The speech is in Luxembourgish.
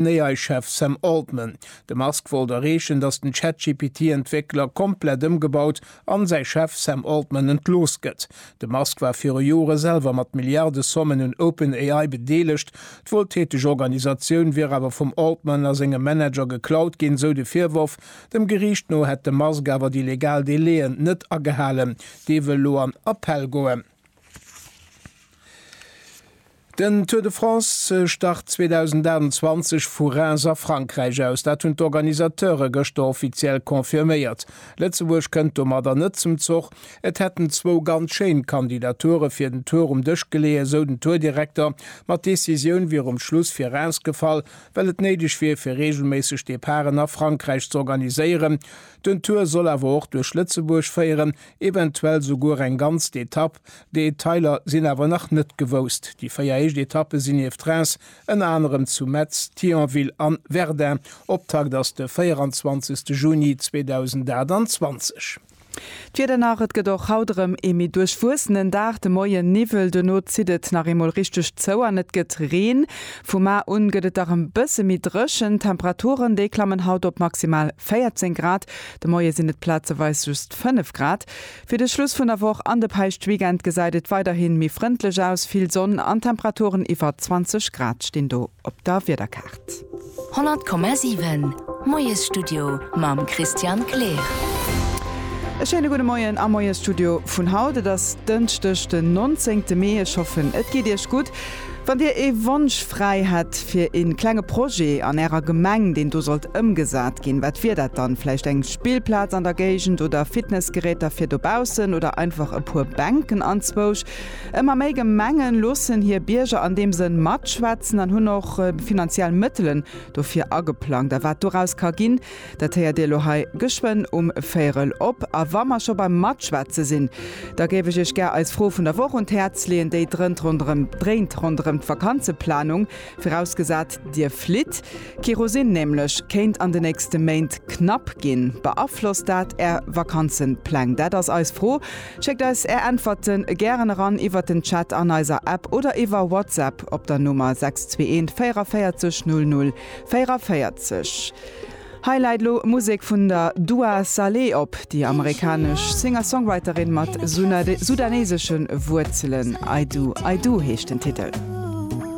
D'OpenAI-Chef Sam Altman. De Musk wollt erreechen, datt den ChatGPT-Entwéckler komplett ëmgebaut an säi Chef Sam Altman entlooss gëtt. De Musk war viru Jore selwer mat Milliardesommen un OpenAI bedeelegt. D'wueltäteg Organisatioun wier awer vum Altman a sengem Manager geklaut ginn, esou de Virworf. Dem Geriicht no hätt de Musk awer déi legal Delaien net agehalen. Dee wëll elo an Appell goen. Den Tour de France start 2028 vu Reims a Frankräich aus. Dat hunn d'Organisateure gëschter offiziell confirméiert. Lëtzebuerg kënnt domadder net zum Zoch. Et hätten zwou ganz schéin Kandidature fir den Tour um Dësch geleeë, sou den Tour-Direkter. Ma d'Decisioun wier um Schluss fir Reims gefall, well et néideg wier fir reegelméisseg Departen a Frankräich z'organiséieren. Den Tour soll awer och duerch Lëtzebuerg féieren, eventuell souguer eng ganz d'Etapp. Detailer sinn awer nach net gewousst. Déi véier éischt Etappe sinn nieft Reims ënner anerem zu Metz, Thionville an Verdun. Optakt ass de 24 Juni 2028. D'Wieder nach, Et gëtt och haut erëm ee méi duerchwuessenen Dag. De Moien Niwwel, duerno zitt et nach eemol richteg zou an et gëtt Reen. Vu mar un gëtt et dach e bësse méi dréchen. D'Temperaturen, déi klammen haut op maximal 14 Grad, de Moie sinn et plazeweis just 5 Grad. Fir de Schluss vun der Woch an de Päischtweekend gesäit et weiderhi méi frëndlech aus, vill Sonn an Temperaturen iwwer 20 Grad stinn do op der Wiederkaart. 100,7 Moiesstudio mam Christian Kleer. E schéine gudde Moien am Moiesstudio vun haut. Et ass Dënschdeg den 19 Mee. Ech hoffen et geet Iech gutt. Wann Dir ee Wonsch fräi hätt fir ee klenge Projet an Ärer Gemeng, deen do sollt ëmgesat ginn, wat wier dat dann? Vläicht eng Spillplaz an der Géigend oder Fitnessgeräter fir dobaussen oder einfach e puer Bänken anzwousch? Ëmmer méi Gemenge loossen hir Bierger an deem Sënn matschwätzen an hunn och finanziell Mëttelen dofir ageplangt. A wat doraus ka ginn, Dat héiert Dir elo hei geschwënn um Véierel op. A wa mer scho beim Matschwätze sinn, da géif ech Iech gär eis Fro vun der Woch un d'Häerz leeën. Déi drënt ronderëm, dréint ronderëm d'Vakanzeplanung, virausgesat, Dir flitt. Kerosin nämlech kéint an de nächste Méint knapp ginn. Beaflosst dat Är Vakanzepläng? Dat ass eis Fro. Schéckt eis Är Äntwerte gären eran iwwert den Chat an eiser App oder iwwer WhatsApp op der Nummer 621 44 00 44, Hei läit elo Musek vun der Dua Saleh op, déi amerikanesch Singer-Songwriterin mat sudaneesesche Wuerzelen. I Do, I Do heescht den Titel.